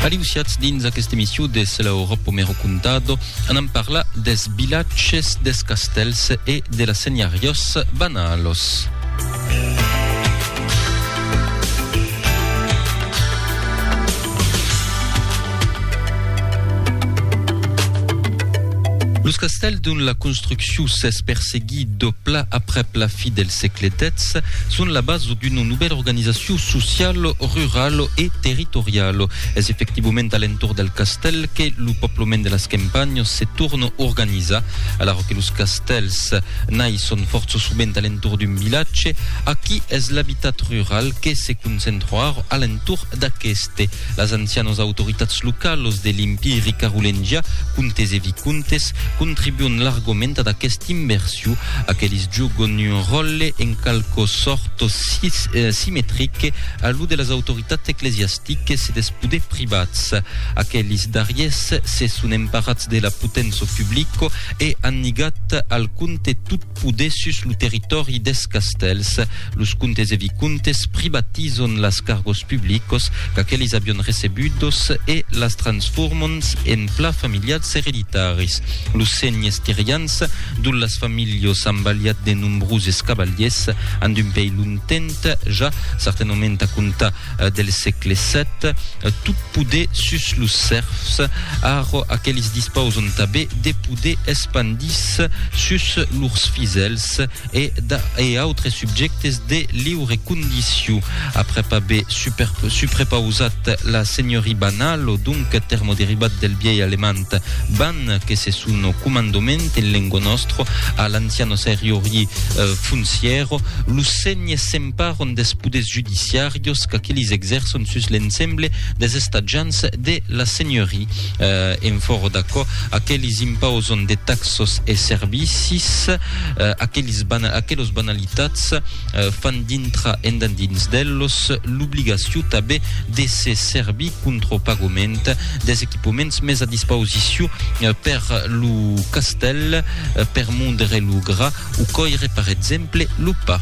Aliusiatz dins aquesta emission de Se la Europa me ho contado, anam parlar des vilatges, des castèls e de las senhariós banalos. Los castèls dont la construccion s'es perseguida, I dobla aprèp la fi del sègle xix son la basa d'una novèla organizacion sociala, rurala e territoriala. Es efectivament a l'entorn del castèl que lo pòblement de las campanhas se torna organizar. Alara que los castèls naisson fòrça sovent a l'entorn d'un vilatge, aquí es l'abitat rural que se concentra ara a l'entorn d'aqueste. Las ancianas autoritats localas de l'Empiri carolengià, comtes e vicomtes, contribuon largament ad aquesta inversion. Aqueles jogon un ròtle en qualque sòrt simetrique a lo de las autoritats ecclesiastiques e dels poders privats. Aqueles darriers se son emparats de la potença publica e an ligat al comte tot O dessus lo territòri deths castèls, los comtes e vicomtes privatizon las cargos publicos qu'aquelis avion recebudos e las transformon en plats familials ereditaris. Los senhes tirians, dont las familhos an balhat de nombroses cavaliers, an d'un pei longtemps ja, certainement a comptar del sègle sèt, tot poder sus los sèrfs, arro aquelis dispauson tabé de poder espandis sus lors fisèls e e autres subjèctes de liure condiciu. Aprèp aver suprepausat la senhorie banal o donc termoderivat del vièi alemand ban que se son comandoment en lengo nostro a l'anciano seriorie funcièro, lo sègne paron deth poders judiciarios qu'aquelis exerçon sus l'ensemble des estatjants de la senhoria. En fòro d'aquò, aquelis impauson de taxos e servicis, aquelos banalitats fan dintra endendins d'ellos l'obligacion tanben de se servir contr'au pagament des equipaments mes a dispausicion per lo castèl, per mondre lo gra o còire, par exemple, lo pa.